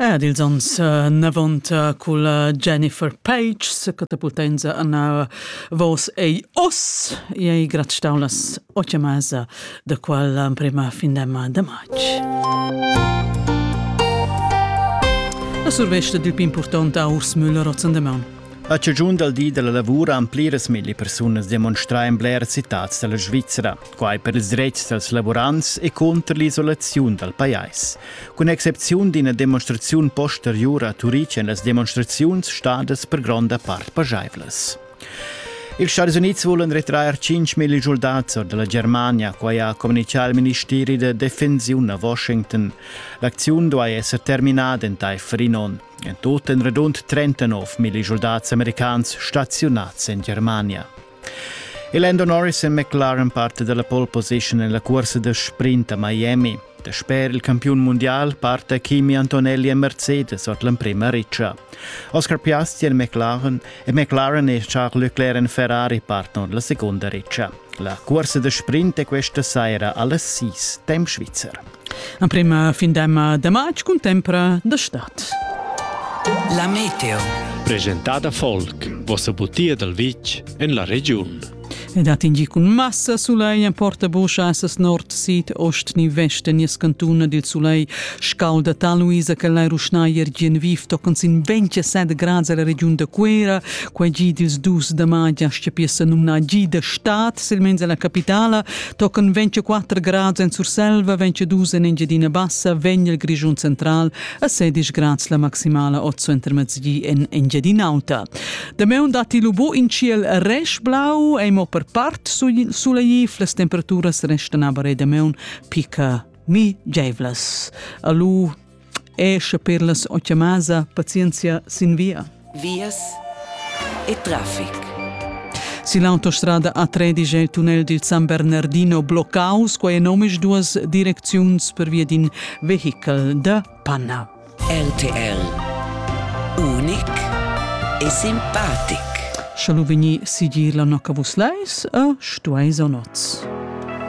Ed ils ons novanta cul Jennifer Page se catapultenza ana vos ei os e ei grat staulas o chiamasa da qual prima fin da ma da match. La survesta dil più importante Urs Müller Rotzendemon. A cigiun dal di della lavura han pliras milli persunas demonstrà in bler citats della Svizzera. Quai per ils dretgs dals lavurants e cunter l'isolaziun dal pajais. Cun excepziun d'ina demonstraziun posteriura a Turitg èn las demonstraziuns stadas per gronda part pajaivlas. Ils Stati Unids vulan retrair 5 million soldats da la Germania, quai ha communitgà il ministeri da defensiun a Washington. L'acziun duai esser terminada entaifer in onn. En tut èn radund 39 million soldats americans staziunads en Germania. Il Lando Norris è McLaren parte della pole position nella corsa da sprint a Miami. Dasper il campiun mondial parte Kimi Antonelli e Mercedes ord l'emprema riccia. Oscar Piastri e McLaren e McLaren e Charles Leclerc en Ferrari partono la seconda riccia. La corsa da sprint è questa saira alle 6, temp Svizzera. Emprima fin demma de matg cun tempra de stat. La meteo. Presentada folk, vossa butia dal vitg en la regiun. Ed hat ingi cun massa sulei en portabuscha assas nord, sid, ost ni vest en nies cantuna dil sulei scalda ta Luisa che lai ruschnaier gien vif toccon sin 27 grad la regiun da Cuera, quei gi dils dus da magia stia piessa numna gi da stat, silmeins alla capitala, Tochen 24 grads en Surselva, 22 en Engiadina Bassa, vegn il Grischun central a 16 grads la maximala ozo intermezzi en Engiadina Auta. Dameun datti lu bu in ciel resch-blau, ei mo per part sulaiv, las temperaturas restan aber dameun picca migeivlas. Alu e sche per las o chiamasa pazienzia sin via. Vias e traffic. Si l'autostrada A13 è il tunnel dil San Bernardino bloccaus, quei enomisch duas direcziuns per via d'in vehikel da Panna. RTL Unic e simpatic. Schalu vegni sigir la nocca vus leis a stueis o noz.